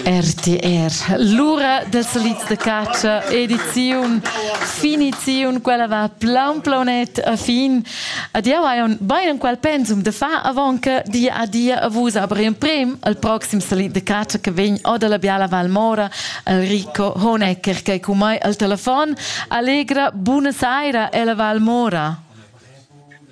RTR, l'ura del solits de caccia, ediziun, finiziun, quella va plan planet a fin. Ad jau hai un bain en qual pensum de fa avant che di a dia a vus aber in prem al proxim solit de caccia che vegn o dalla biala Val Mora al Rico Honecker che cu mai al telefon. Allegra, buona saira ella Val Mora.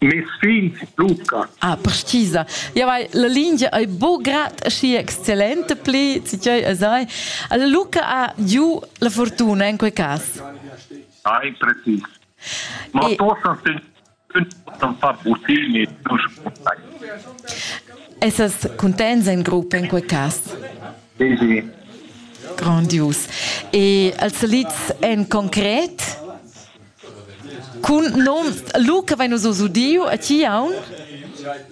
Mes figl Luca. Ah, precisa. Ja, vai, la lingia è bo grad aschi exzellente pli, tgei es ei. Alla Luca ha giu la fortuna in quei cas. Ai, precis. Ma e... tosan sen far butini non sputai. Essas contents in gruppo in quei cas? Sì, sì. Grandios. E als salids en concret? Cun num Luca vein nus oz udiu a ti aunc?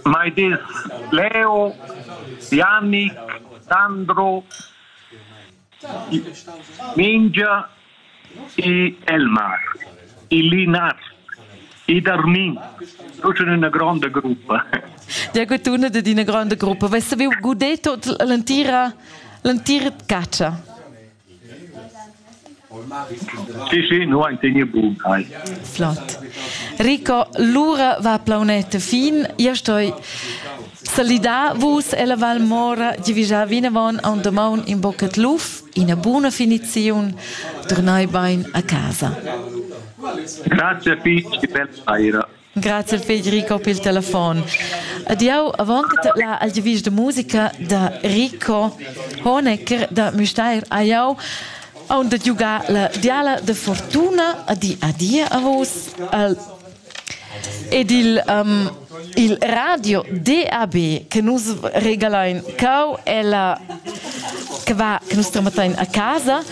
Mai dis Leo, Yannick, Sandro, Mingia e Elmar, il Linat, ed Armin. Tu sei una grande gruppa. Ja gut, una de d'ina grande gruppa. Vess saviu guder tot l'entira l'entira catscha? Sì, sì, no ein tegne bun. Hai. Flott. Rico, lura va plaunetta fin. Io stoi salidar vus ella Val Mora, die wir ja vinavon an domaun in boccat luf, ina buna finiziun, turnai bein a casa. Grazie Pete, che bella saira. Grazie Federico per il telefono. Ed jau, avant che la al givis de musica da Rico Honecker da Müstair, a jau on de giugar la diala de fortuna a di a di a vos al ed il um, il radio DAB che nus regalain cau e la che va che nus tramatain a casa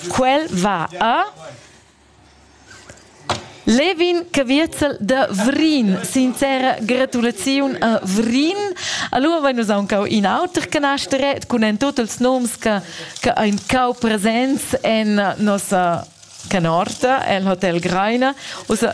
quel va a Levin Caviezel da Vrin. Sincera gratulaziun a Vrin. Allora vein nus aunc in auter canasteret cun en tot els noms che che ein cau presents en nossa canorta el Hotel Greiner. Ussa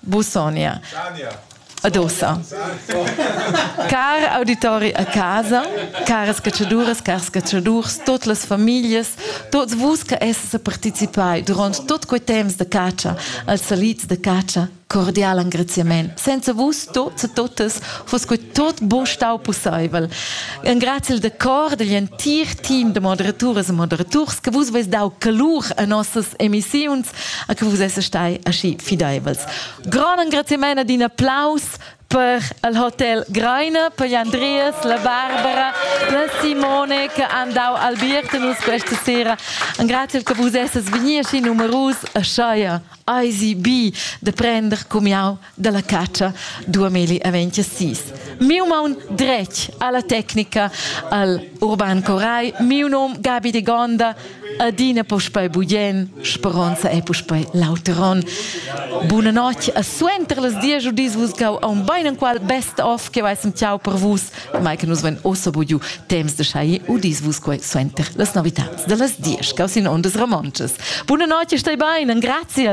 Busogna. Ad ossa. Car auditori a casa, caras catschaduras, cars catschadurs, tot las familias, tots vus che esses participai durant tot quei temps de catscha als salits de catscha, cordial engraziament. Senza vus tots e totas fos quei tot bo stau pusseivel. Engrazil de cor dagl entir team de moderaturas e moderaturs che vus veis dau calur a nossas emissiuns a che vus esses stai aschi fideivels. Gran engraziament ad in applaus per il hotel Greiner, per gli Andreas, la Barbara, la Simone che han dau albierta nus questa sera. Engraziel che vus esses vegni aschi numerus a scheier eisi bi de prender cum jau dalla catscha 2026. Miu maun dretg alla tecnica, al Urban Coray, miu nom Gabi de Gonda, adina puspei bugen, speronza e puspei lauteron. Buna notg, a suenter las dies u dis vus gau a un beinenqual best of che veissem ciao per vus, mai che nus vein ossa bugiu temps de schai u dis vus quei suenter las novitads de las dies, gau sin ondas romonces. Buna notg e stai bein, grazie.